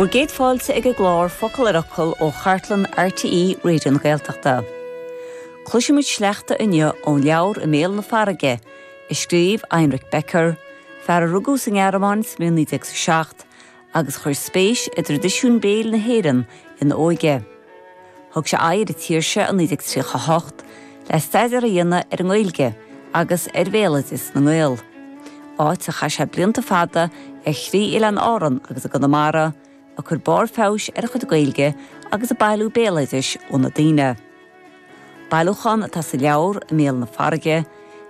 Bhur gcéad fáilte ag an gclár Focal ar Fhocal ó chartlann RTÉ Raidió na Gaeltachta. Cloisfimid sleachta inniu ón leabhar I mBéal na Farraige, a scríobh Heinrich Becker, fear a rugadh sa nGearmáin sa mbliain 1907 agus a chuir spéis i dtraidisiún béil na hÉireann ina óige. Thug sé aghaidh ar an tír seo i 1938 le staidéar a dhéanamh ar an nGaeilge agus ar bhéaloideas na nGael, áit ar chaith sé blianta fada ar thrí Oileán Árann agus i gConamara, ag cur barr feabhais ar a chuid Gaeilge agus ag bailiú béaloidis ó na daoine. Bailiúchán atá sa leabhar, I mBéal na Farraige,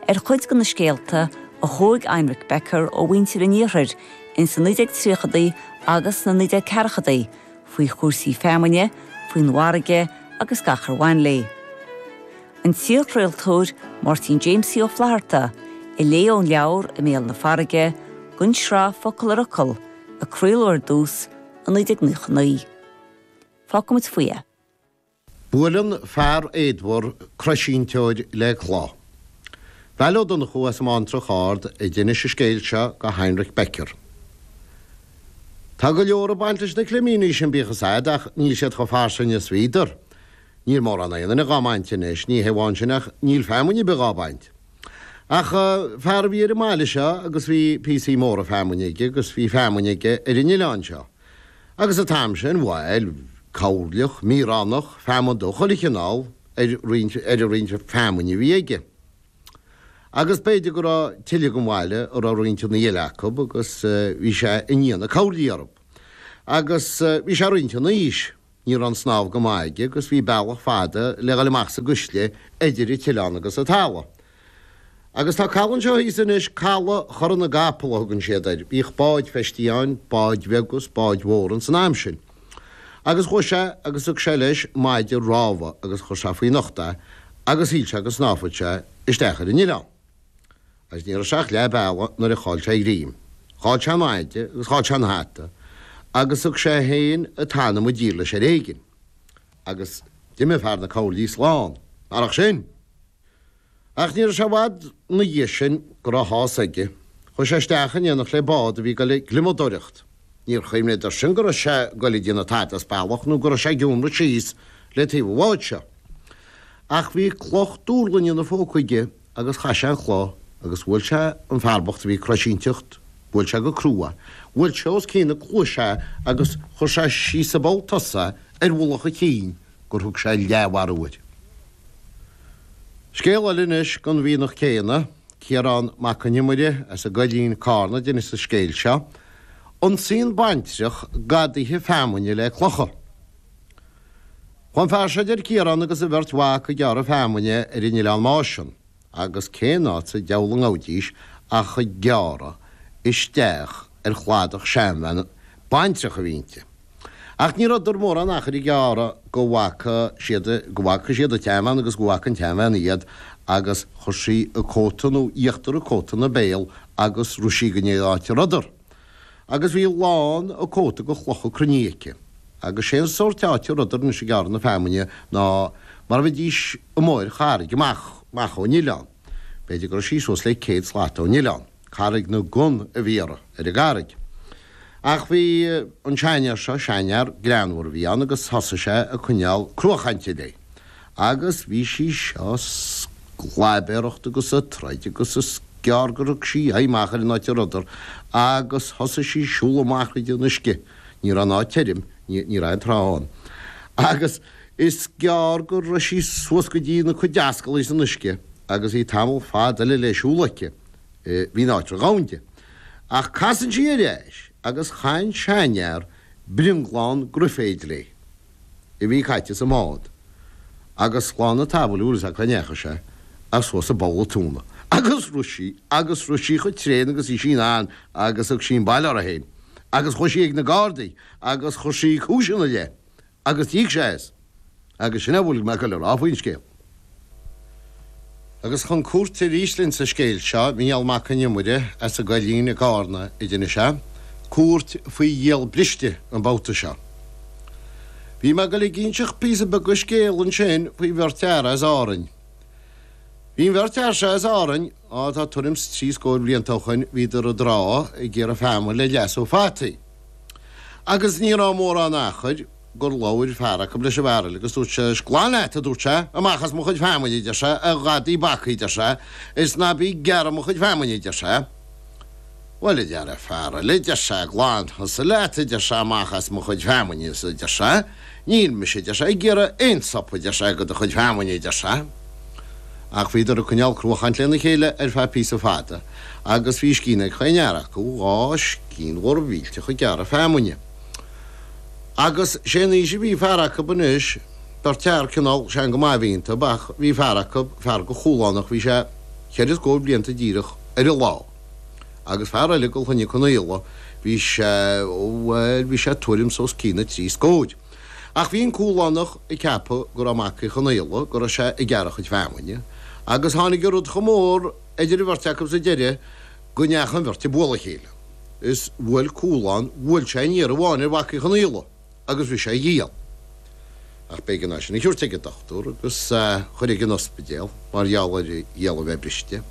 ar chuid de na scéalta a thóig Heinrich Becker ó mhuintir an Iarthair ins na 1930idí agus sna 1940idí, faoi chúrsaí feamainne, faoin bhfarraige agus gach ar bhain léi. An t-iarchraoltóir Máirtín Jaimsie Ó Flatharta a léigh ón leabhar I mBéal na Farraige, don tsraith, Focal ar Fhocal, a craoladh ar dtús i 1999. Fágfaimid faoi é. Buaileann fear éadmhar croisínteoir le cloch. Val Ó Donnchú as an mBántrach Ard a d'inis an scéal seo go Heinrich Becker. Tá go leor ag baint leis na climíní sin bíodh is a'd ach níl siad chomh fairsing is bhíodar. Níl mórán aon duine dhá mbaint anois, ní hé amháin sin ach níl feamainn a' bith dhá baint. Ach fear a bhí ar an mbaile seo agus bhí píosaí móra feamainne aige agus bhí feamainn aige ar an oileán seo. Agus an t-am sin bhí coirleach, míoránach, feamainn de chuile chineál ar an roinnt feamainne a bhí aige. Agus b'fhéidir go raibh tuilleadh ar an mbaile a raibh roinnteanna eile acu agus bhí sé i ndiaidh na coirlí orthu. Agus bhí sé roinnt in aois. Ní raibh an snámh go maith aige agus bhí bealach fada le dhul amach sa gcuisle eidir an t-oileán agus an talamh. Agus tá caladh anseo thíos anois, Caladh Chora na gCapall a thugann siad air. Bhíodh báid feistithe ann, báid bheaga is báid mhóra ins an am sin. Agus chuaidh sé agus thug sé leis maide rámha agus chuir sé faoina ucht é agus shíl sé go snámhfad sé isteach ar an oileán. Agus ní raibh sé ach leath bealaigh nuair a chaill sé a ghreim. Chaill sé an maide agus chaill sé an hata agus thug sé féin an t-anam i dtír leis ar éigin. Agus d'imigh fear na coirlí slán, marach sin. Ach ní raibh sé i bhfad ina dhiaidh sin go raibh a shásamh aige. Chuaigh sé isteach in éineacht le bád a bhí ag goil ag gliomadóireacht. Níor chuimhníodar sin go raibh sé ag goil ag déanamh tada as bealach nó go raibh sé ag iomramh síos le taobh an bháid seo. Ach bhí cloch dúrlainne in a phóca aige agus chaith sé an chloch agus bhuail sé an fear bocht a bhí ag croisínteacht, bhuail sé go cruaidh, bhuail sé os cionn na cluaise é agus chuir sé síos i bpoll tosaigh é ar mhullach a chinn gur thug sé leathmharú air. Scéal eile anois gon mhianach céanna. Ciarán Mac Con Iomaire as an gCoillín, Carna, a d'inis an scéal seo. Ionsaíonn baintreach gadaithe feamainne le clocha. Fanfaidh sé, a deir Ciarán agus a bheirt mhac ag gearradh feamainne ar an Oileán Máisean, agus cén áit sa deabhal a ngabhaidís ach ag gearradh isteach ar chladach seanbhean baintreach a bhí inti. Ach ní rabhdar mórán achair ag gearradh go bhfaca siad, go bhfaca siad an tseanbhean agus go bhfaca an tseanbhean iad agus chuir sí a cóta nó íochtar a cóta ina béal agus rith sí go dtí an áit a rabhdar. Agus bhí lán a cóta de chlocha cruinne aici. Agus sén sórt áit a rabhdar anois ag gearradh na feamainne ná mar a bheidís amuigh ar charraig amach, amach ó'n oileán. B'fhéidir go raibh sí suas le céad slat ó'n oileán. Carraig na gCon a bhí uirthi, ar an gCarraig. Ach bhí an seanfhear seo, seanfhear greannmhar a bhí ann agus thosaigh sé a coinneál cruadhchainte léi. Agus bhí sí seo a sclaibéaracht agus a troid agus is gearr gur thug sí aghaidh amach ar an áit a rabhdar agus thosaigh sí a siúl amach tríd an uisce, ní rabh an áit tirim, ní rabh aon trá ann, agus is gearr go rabh sí suas go dtí na cuid ascallaí san uisce agus bhí tamall fada eile le siúl aici. Bhí an áit ródhomhain di. Ach casann sí ar ais agus chaith an seanfhear brionglán graiféid léi, a bhí caite sa mbád, agus slán an tsamhail is nach ndeachaigh sé suas i bpoll a tóna. Agus rith sí agus rith sí cho tréan agus bhí sí 'nann agus thug sí an baile uirthi féin. Agus chuaigh sí ag na Gardaí agus chuir sí cúis ina leith Agus d'íoc sé as. Agus sin é a bhfuil mé ag goil a rá faoin scéal. Agus chun cúirte arís linn sa scéal seo, Mícheál Mac an Iomaire as an gCoillín i gCárna a d'inis é, cúirt faoi ghiall briste an babhta seo. Bhí mé ag goil ag inseacht píosa beag de scéal ansin faoi bheirt fhear as Árainn. Bhí an bheirt fhear seo as Árainn, á tá tuairim 's trí scóir blianta ó shoin, bhíodar i dtrá ag gearradh feamainn le leasú fataí. Agus ní raibh mórán achair gur labhair fear acu leis an bhfear eile agus dúirt sé, Is glan leat, a dúirt sé, amach as mo chuid feamainne, a deir sé, a ghadaí bhacaigh, a deir sé, is ná bí ag gearradh mo chuid feamainne, a deir sé. Bhuel, a deir an fear eile, a deir sé, glan thusa leat, a deir sé, amach as mo chuid feamainne, a deir sé, Níl mise, a deir sé, ag gearradh aon tsop, a deir sé, de do chuid feamainne, a deir sé. Ach bhíodar ag coinneál cruachainte le na chéile ar feadh píosa fada agus bhí scian ag chaon fhear acu, dhá scian mhór mhillteach ag gearradh feamainne. Agus 'sé an aois a bhí fear acu anois, beirt fhear cineál sean go maith a bhí ionntub ach bhí fear acu, fear de Chualánach, bhí sé cheithre scóir blianta díreach ar an lá. Agus fear eile go Chlainne Conaola bhí sé, bhuel bhí sé tuairim's os cionn a trí scóir. Ach bhí an Cualánach ag ceapadh go raibh Mac Uí Chonaola, go raibh sé ag gearradh a chuid feamainne. Agus tháinig rud chomh mór idir an bheirt acu sa deireadh go ndeachaigh an bheirt ag bualadh a chéile. Is bhuail Cualán, bhuail sé aon iarraidh amháin ar Mhac Uí Chonaola. agus bhris sé a ghiall. Ach b'éigean é sin a thiúirt ag an dochtúr agus chuir ag an ospidéal mar gheall ar a ghiall a bheith briste.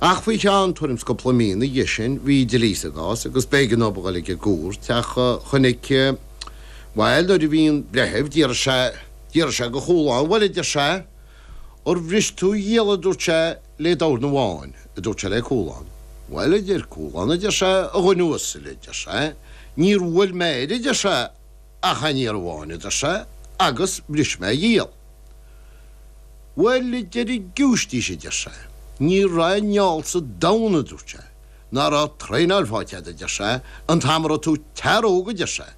Ach faoi cheann tuairim 's cúpla mí na dhiaidh sin bhí dlí sa gcás agus b'éigean dóib a dhul ag an gcúirt ach chonaic bhuel nuair a bhí an breitheamh d'iarr sé d'iarr sé go Chualán bhuel a deir sé ar bhris tú a ghiall a dúirt sé lé dorn amháin, a dúirt sé lé Cúlán. Bhuel, a deir Cúlán, a deir sé, a dhuine uasail, a deir sé, níor bhuail mé air, a deir sé, ach a'n iarraidh amháin, a deir sé, agus bhris mé a ghiall. Bhuel, a deir an Giúistís, a deir sé, ní raibh a'n fheall sa domhan, a dúirt sé, ná raibh traenáil faighte agat, a deir sé, an t-am a raibh tú i t'fhear óg, a deir sé.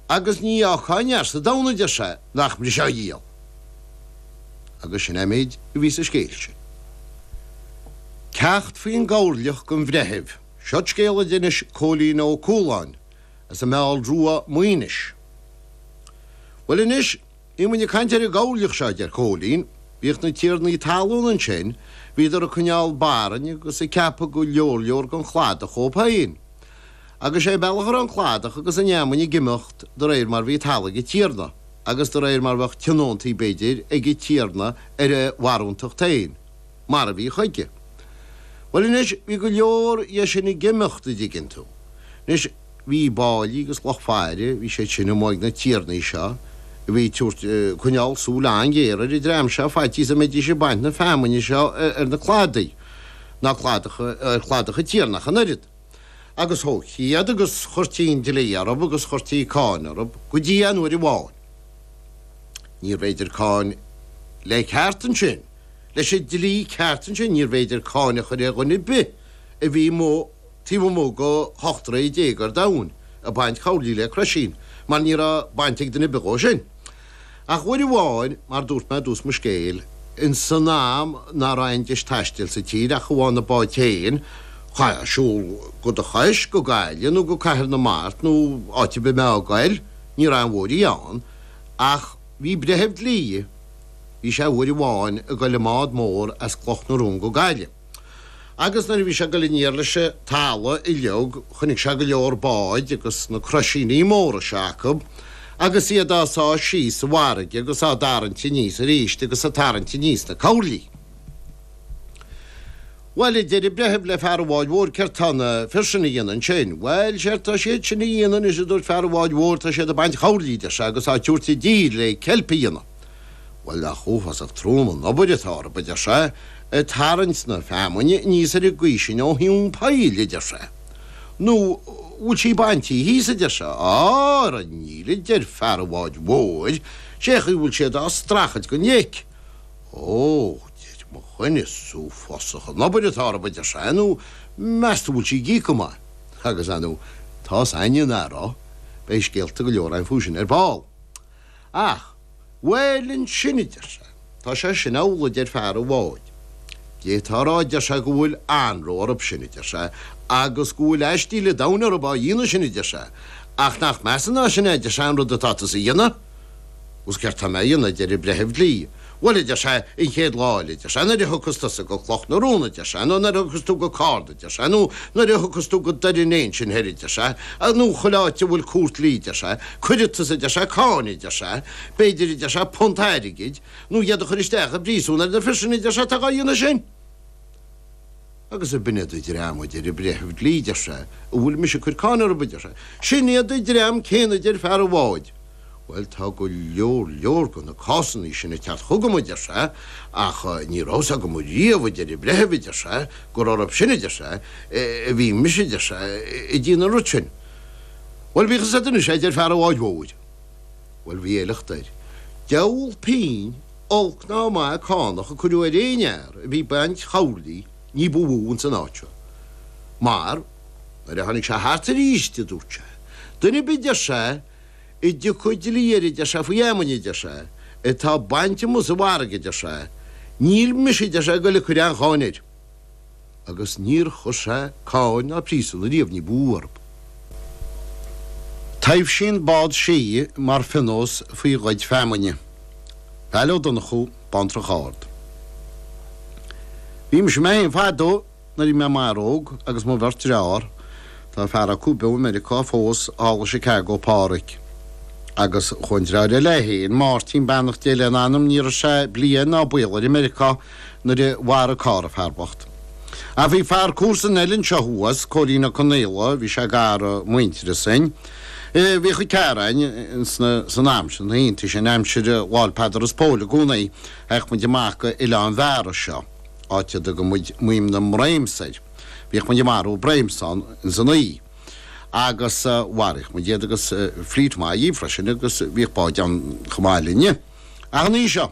agus ní fhágfá aon fhear sa domhan adeir sé nach mbrisfeá a ghiall. Agus sin é an méid a bhí sa scéal sin. Ceacht faoi'n gcoirleach don bhreitheamh, Seod scéal a d'innis Cóilín Ó Cualáin as a' Meall Rua, Maoinis. Bhuel anois. Bhí muid ag caint ar an gcoirleach seo, a deir Cóilín. Bhíodh na tiarnaí talún ansin, bhíodar ag coinneáil barainn agus ag ceapadh go leor leor den chladach dhóibh féin. Agus sé bealach a raibh an cladach agus an fheamainn ag imeacht do réir mar bhí talamh ag an tiarna, agus do réir mar bheadh tionóntaí, b'fhéidir, ag an tiarna ar a bharúntacht féin. Mar a bhí chuige. Bhuel anois, bhí go leor dhe sin ag imeacht, a' dtuigeann tú. Anois. Bhí báillí agus lucht faire, bhí siad sin amuigh ag na tiarnaí seo a bhí ag tabhairt, coinneáil súil an-ghéar ar an dream seo faitíos a mbeidís ag baint na feamainne seo ar na cladaí, ná cladacha, ar chladacha tiarna ach an oiread. Agus thógthaí iad agus chuirtí an dlí orthu agus chuirtí cáin orthu go dtí an uair amháin. Níorbh fhéidir cáin le ceart ansin, leis an dlí ceart ansin, níorbh fhéidir cáin a chur ar dhuine ar bith a bhí amuigh, taobh amuigh go ocht troigh déag ar domhain ag baint coirlí le croisín, mar ní raibh baint ag duine ar bith dhó sin. Ach uair amháin, mar dúirt mé i dtús mo scéil, ins an am ná raibh aon deis taistil sa tír ach amháin na báid féin, chaithfeá siúl go do chois, go Gaillimh nó go Cathair na Mart nó áit ar bith a mbeifeá a' goil, ní raibh aon bhóithrí ann, ach bhí breitheamh dlí, bhí sé uair amháin a' goil i mbád mór as Cloch na Rón go Gaillimh. Agus nuair a bhí sé ag goil aniar leis an talamh uilig chonaic sé go leor bád agus na croisíní móra seo acu agus iad á sá síos sa bhfarraige agus á dtarraingt aníos aríst agus ag tarraingt aníos na cabhlaí. Bhuel, a deir an breitheamh le fear an bháid mhóir céard tá na fir sin a dhéanamh ansin? Bhuel, séard tá siad sin a dhéanamh anois a dúirt fear an bháid mhóir tá siad ag baint chabhlaí a deir sé agus á dtabhairt i dtír le ceilp a dhéanamh. Bhuel, nach uafásach trom an obair atá orthu, adeir sé, ag tarraingt na feamainne aníos ar an gcaoi sin ó thóin an phoill, adeir sé. Nó bhfuil sí baintí thíos, adeir sé. Á, ara níl, adeir fear an bháid mhóir, sé chaoi bhfuil siad á strachailt go dtig. Ó, deir mo dhuine, is uafásach an obair atá orthu, adeir sé, nó meas tú bhfuil sí ag íoc go maith. Agus, a, nó tá's a'inne ar ndóigh, beidh scéalta go leor a'inn fúisin ar ball. Ach bhuel ansin, a deir sé, tá sé sin amhlaidh, a deir fear an bháid. Cé tá a rá, a deir sé, go bhfuil anró orthub sin, a deir sé, agus go bhfuil aistíl a' domhain orthub á dhéanamh sin, a deir sé, ach nach measa ná sin é, a deir sé, an rud atá tusa a dhéanamh? Agus céard tá mé a dhéanamh? a deir an breitheamh dlí. Bhuel, a deir sé, an chéad lá eile, a deir sé, nuair a thiocfas tusa go Cloch na Rón, a deir sé, nó nuair a thiocfas tú go Cárna, a deir sé, nó nuair a thiocfas tú go Doire an Fhéich ansin thoir, a deir sé, a, nó chuile áit a bhfuil Cúirt Dlí, a deir sé, cuirfidh tusa, a deir sé, cáin, a deir sé, b'fhéidir, a deir sé, punt airgid, nó iad a chur isteach i bpríosún ar na fir sin, a deir sé, atá dhá dhéanamh sin. Agus ab in é an dream a deir a breitheamh dlí deir sé a bhfuil mise ag cuir cáin orthub deir sé sin iad a dream céanna deir fear a bháid bhuel tá go leor leor go na cásannaí sin ag teacht chugam a deir sé ach ní raibh fhios agam riamh a deir a breitheamh a deir sé gur orthub sin a deir sé a bhí mise a deir sé ag díonamh an rud sin bhuel bíodh fhios a'd anois é deir fear a bháid mhóir bhuel bhí éifeacht air deabhal pinn a Olc ná maith cánach a cuireadh ar aon fhear a bhí baint chabhlaigh ní ba mhó ins an áit seo. Mar, nuair a tháinig sé thart aríst, a dúirt sé, duine ar bith, deir sé, a dtiocfadh dlí air, deir sé, faoi fheamainn, deir sé, atá bainte amuigh sa bhfarraige, deir sé, níl mise, deir sé, ag goil a cuir aon cháin air. agus níor chuir sé cáin ná príosún ariamh ní ba mhó orthub. Taibhsíonn bád sídhe mar phionós faoi ghoid feamainne. Val Ó Donnchú, Bántrach Ard. Bhí mise mé féin fadó nuair bhí mé i m'fhear óg agus mo bheirt dreár, tá fear acu beo i Meiriocá fós, thall i Chicago, Pádhraic, agus chuaigh an dreár eile é féin, Máirtín, beannacht Dé lena anam, ní raibh sé bliain ná baol air i Meiriocá, nuair a mhair, a chara, an fear bocht. Ach bhí fear comharsan an oileáin seo thuas, Cóirín Ó Conaola, bhí sé gar i muintearas dhom. Bhíodh muid ag tarraingt síos an t-am sin, thíos in aimsir Lá'l Peadair is Póil i gcomhnaí, théadh muid amach go Oileán Mhara seo, áit a dtugann muid Maoim na mBran air. Bhíodh muid ag marú breams ann san oíche. Agus mharaíodh muid iad agus flít mhaith dhíobh freisin agus bhíodh báid ann chomh maith linne. Ach an oíche seo.